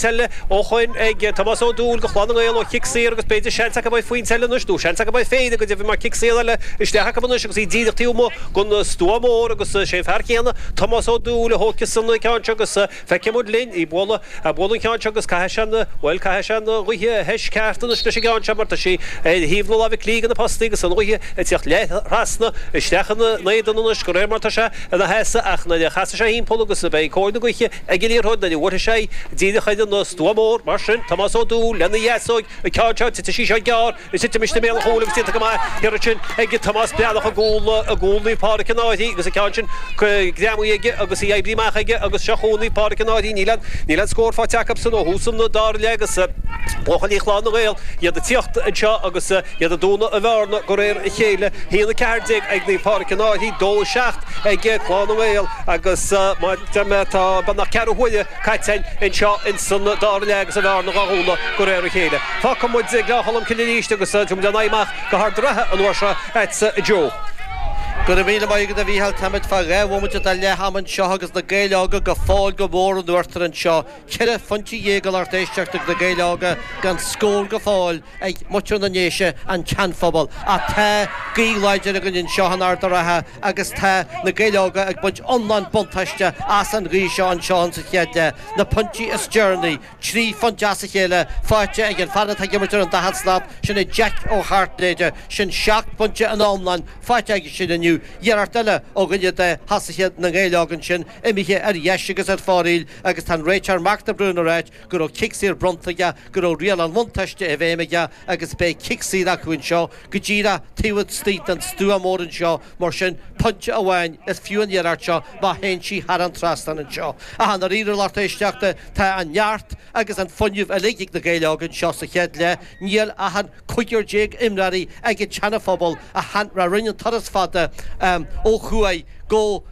eile ó shoin ag Tomás Ó Dúill go Chlann na nGael ó chic saor agus b'fhéidir seans acu beidh pointe eile anois nó seans acu é féin i go deimhin mar cic saor eile isteach acu anois agus iad díreach taobh amuigh den stua mór agus is é an fear céanna Tomás Ó Dúill a thóigfeas an ceann seo agus feicfidh muid linn é ag bualadh bualadh an ceann seo agus caithfidh sé an bhuel caithfidh sé an ghaoth a mheas ceart anois leis an gceann seo mar tá sí ar thaobh na láimhe clí de na postaí agus an ghaoth ag teacht leath trasna isteach in éadan anois de réir mar tá sé ina sheasamh ach nuair a chasfaidh sé thimpeall agus beidh cóir na gaoithe Ag an iarrthóir nuair a bhuartha sé, d'iarr chuile an stua mór, mar sin, Tomás Ó Dúill, lena dheasóg, an ceann seo, titeann sí seo gearr, is titeann sí i mbéal an chúil agus déanta go maith, ansin ag Tomás Breathnach i gcúl i gcúl Naomh Pádhraic an Fhairche agus an ceann sin greamaithe aige agus í oibrithe amach aige agus seo chugainn Naomh Pádhraic an Fhairche, níl an, níl an scór faighte acu sin ó thús an, dara leath, agus buachaillí Chlann na nGael, iad ag tíocht anseo agus iad ag dúnadh na bearna de réir a chéile, 1:14 ag Naomh Pádhraic an Fhairche, 2:07. ag Clann na nGael agus ó mo dheimhin tá beagnach ceathrú huaire caite anseo ins an dara leath agus an bhearna dhá dhúnadh de réir a chéile. Fágfaidh muid Gleann Cholm Cille arís agus imeoidh linn amach go hArd an Rátha an uair seo, agatsa a Joe. Go raibh míle maith agat a Mhíchíl, táimid fá dhá bhomaite de leath ama anseo agus Na Gaeil Óga go fóill go mór in uachtar anseo. Ceithre phointe dhéag a lucht éisteachta ag Na Gaeil Óga gan scór go fóill ag muintir na nDéise, an Seanphobal. Tá gaoth láidir againn anseo in Ard a' Rátha agus tá Na Gaeil Óga ag baint iomlán buntáiste as an ghaoth seo anseo sa chéad leath. Na pointí is deireanaí, trí phointe as a chéile faighte ag an fear atá ag imirt ar an daichead slat, sin é Jeaic Ó hAirtnéide. Sin seacht bpointe in iomlán faighte aige sin inniu. Iarracht eile ó dhuine de thosaithe na nGael Óg ansin. imithe ar dheis agus ar fóraíl agus tá an réiteoir Mark de Brún ag rá go raibh cic saor bronnta aige, go raibh riail an bhuntáiste i bhfeidhm aige agus beidh cic saor acu anseo go díreach taobh istigh den stua mór anseo mar sin pointe amháin is fiú an iarracht seo má théann sí thar an trasnán anseo. Ach i ndáiríre, a lucht éisteachta, tá an neart agus an fuinneamh uilig ag Na Gaeil Óga anseo sa chéad leath. Níl ach an cúigear déag imreoirí ag an tSeana Phobal a rinne an turas fada ó thuaidh go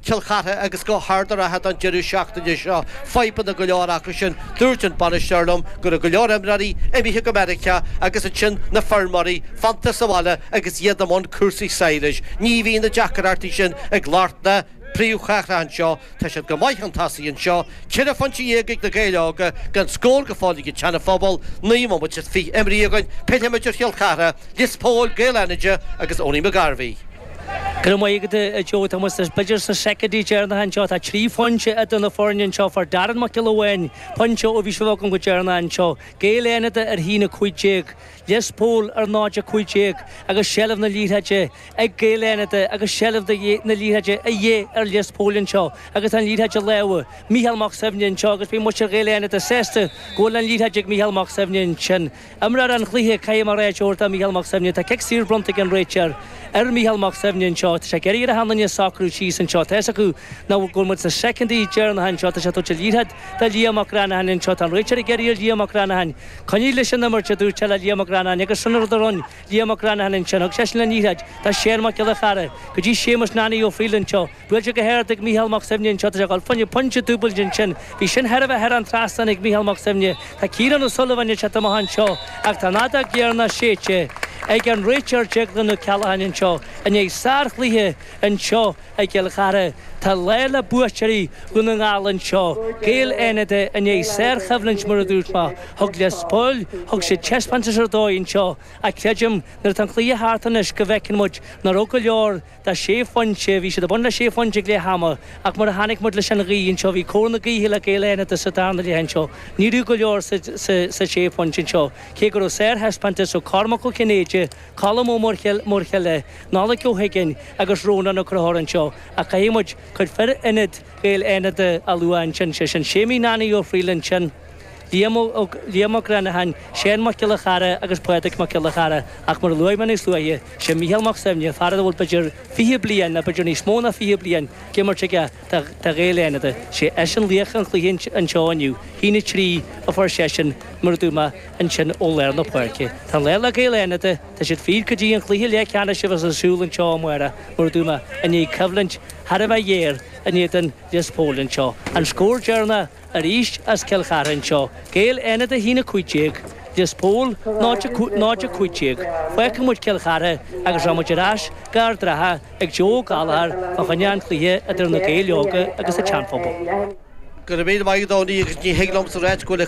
Cill Chartha agus go hArd a' Rátha don deireadh seachtaine seo. Fadhbanna go leor acu sin. Dúirt an bainisteoir liom go raibh go leor imreoirí imithe go Meiriceá agus ansin na feirmeoirí fanta sa bhaile agus iad i mbun cúrsaí sadhlais. Ní bhíonn na deacrachtaí sin ag lucht na. príomhchathrach anseo, tá siad go maith chun tosaigh anseo, ceithre phointe dhéag ag Na Gaeil Óga, gan scór go fóill ag an tSeana Phobal, naoi mbomaite is fiche imeartha againn, pillfimid ar Chill Chartha, Lios Póil, Gaeil Fhánada agus Eoghainí Mac Gairbheith. Go raibh míle maith agat, a Joe, tá muid b'fhéidir sna soicindí deireanacha anseo, tá trí phointe idir na foirne anseo, fuair Darren Mac Giolla Bháin pointe ó bhí sibh agam go deireanach anseo, Gaeil Fhánada ar a haon a cúig déag, Lios Póil ar 0:15 agus seilbh na liathróide ag Gaeil Fhánada agus seilbh na liathróide a dhíth ar Lios Póil anseo agus an liathróid i lámha Micheál Mac Suibhne anseo agus beidh muintir Ghaeil Fhánada sásta go bhfuil an liathróid ag Micheál Mac Suibhne ansin. Imreoir an chluiche, caithfidh mé a rá, is óir dó Micheál Mac Suibhne. Tá cic saor bronnta ag an réiteoir ar Micheál Mac Suibhne anseo. Tá sé ag iarraidh ar achan nduine socrú síos anseo. Tá's acu go bhfuil muid sna soicindí deireanacha anseo. Tá sé ag tabhairt an liathróid do Liam Mac Reannacháin anseo. Tá an réiteoir ag iarraidh ar Liam Mac Reannacháin. Coinnigh leis an imirt, a dúirt sé le Liam Mac Reannacháin agus sin an rud a rinne Liam Mac Reannacháin ansin. Thug seisean an liathróid do Sheán Mac Giolla Chearra go dtí Séamus Nanny Ó Fríl anseo. Buailte go hard ag Micheál Mac Suibhne anseo tá sé ag dul fá choinne pointe dúbailte ansin. Bhí sin chóir a bheith thar an trasnán ag Micheál Mac Suibhne. Tá Ciarán Ó Súilleabháin ag teacht amach anseo ach tá an fheadóg dheireanach séidte ag an réiteoir Déaglán Ó Ceallacháin anseo i ndiaidh sár-chluiche anseo. I gCill Chartha, tá an lá le buaiteoirí Dhún na nGall anseo, Gaeil Fhánada i ndiaidh sárchoimhlint mar a dúirt mé. Thug Lios Póil, thug siad taispeántas ar dóigh anseo ach creidim nuair atá an cluiche thart anois go bhfeiceann muid nach raibh go leor sa sé phointe, bhí siad ag baint le sé phointe ag leath ama ach mar a chonaic muid leis an ghaoth anseo bhí cóir na gaoithe le Gaeil Fhánada sa darna leath anseo, ní raibh go leor sa sé phointe anseo cé go raibh sárthaispeántas ó Cormac Ó Cinnéide, Colm Ó Muirthile, Nollaig Ó hUiginn agus Rónán Ó Conchúir anseo ach caithfidh muid cuid fir ionaid Ghaeil Fhánada a lua ansin, sé sin Séimí Nanny Ó Fríl ansin, Liam Mac Reannacháin, Seán Mac Giolla Chearra agus Pádraig Mac Giolla Chearra ach mar a luaigh mé níos luaithe, sé Mícheál Mac Suibhne, fear a bhfuil b'fhéidir fiche bliain nó b'fhéidir níos mó ná fiche bliain d'imirt aige, do Ghaeil Fhánada. 'Sé eisean laoch an chluiche anseo inniu. 1-3 a fuair seisean, mar a dúirt mé ansin ó lár na páirce. Tá an lá le Gaeil Fhánada. Tá siad fríd go dtí an cluiche leathcheannais a bheas ar siúl anseo amárach, mar a dúirt mé, i ndiaidh coimhlint thar a bheith ghéar in éadan Lios Póil anseo. An scór deireanach arís as Cill Chartha anseo, Gaeil Fhánada 1-15, Lios Póil 0-15. Fágfaidh muid Cill Chartha agus rachaidh muid ar ais go Ard an Rátha. ag Joe Gallagher, fá choinne an chluiche idir na Gaeil Óga agus an tSeanphobal. Go raibh míle maith agat Donie agus ní thig liomsa a ráit go bhfuil a.